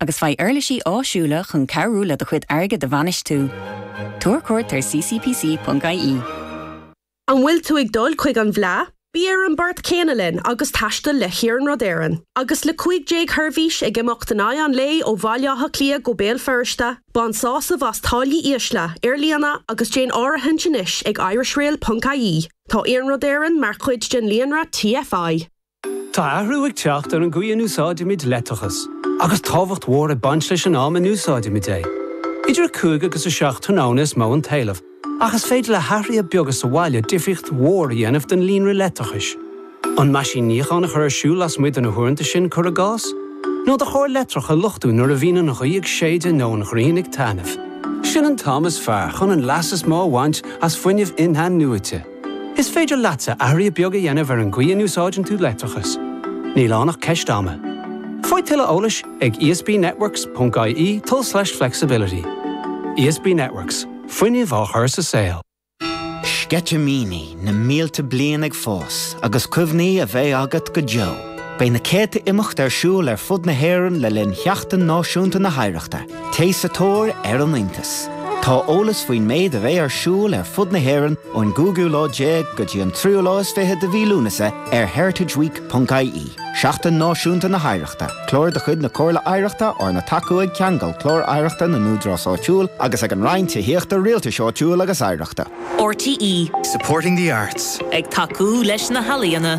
agus faigh uirlisí áisiúla chun cabhrú le do chuid airgid a bhainistiú. Tabhair cuairt ar ccpc.ie. An bhfuil tú ag dul chuig an bhFleadh? Bí ar an mbord céanna linn agus taistil le hIarnród Éireann. Agus le 15 sheirbhís ag imeacht in aghaidh an lae ó Bhaile Átha Cliath go Béal Feirste, bain sásamh as táillí ísle ar líne agus déan áirithint anois ag irishrail.ie. Tá Iarnród Éireann mar chuid den líonra TFI. Tá athrú ag teacht ar an gcaoi a n-úsáidimid leictreachas, agus tábhacht mhór ag baint leis an am a n-úsáidimid é. Idir 5 agus 7 tráthnóna is mó an t-éileamh, ach is féidir le hathruithe beaga sa bhaile difríocht mhór a dhéanamh don líonra leictreachais. An meaisín níocháin a chur ar siúl lasmuigh de na huaireanta sin, cuir i gcás? Nó do charr leictreach a luchtú nuair a bhíonn an ghaoth ag séideadh nó an ghrian ag taitneamh? Sin an t-am is fearr chun an leas is mó a bhaint as fuinneamh in-athnuaite. Is féidir leatsa athruithe beaga a dhéanamh ar an gcaoi a n-úsáideann tú leictreachas. Níl ann ach ceist ama. Faigh tuilleadh eolais ag esbnetworks.ie tulslais flexibility. ESB Networks, fuinneamh á chur sa saol. Sceitimíní na mílte bliain ag fás agus cuimhní a bheidh agat go deo. Beidh na céadta imeacht ar siúl ar fud na hÉireann le linn Sheachtain Náisiúnta na hOidhreachta. Téigh sa tóir ar an iontas. Tá eolas faoin méid a bheidh ar siúl ar fud na hÉireann ón gcúigiú lá déag go dtí an tríú lá is fiche de mhí Lúnasa ar heritageweek.ie. Seachtain Náisiúnta na hOidhreachta, Clár de chuid na Comhairle Oidhreachta arna tacú ag Ceangal Clár Oidhreachta na nÚdarás Áitiúil agus ag an Roinn Tithíochta Rialtais Áitiúil agus Oidhreachta. RTÉ. Supporting the arts. Ag tacú leis na healaíona.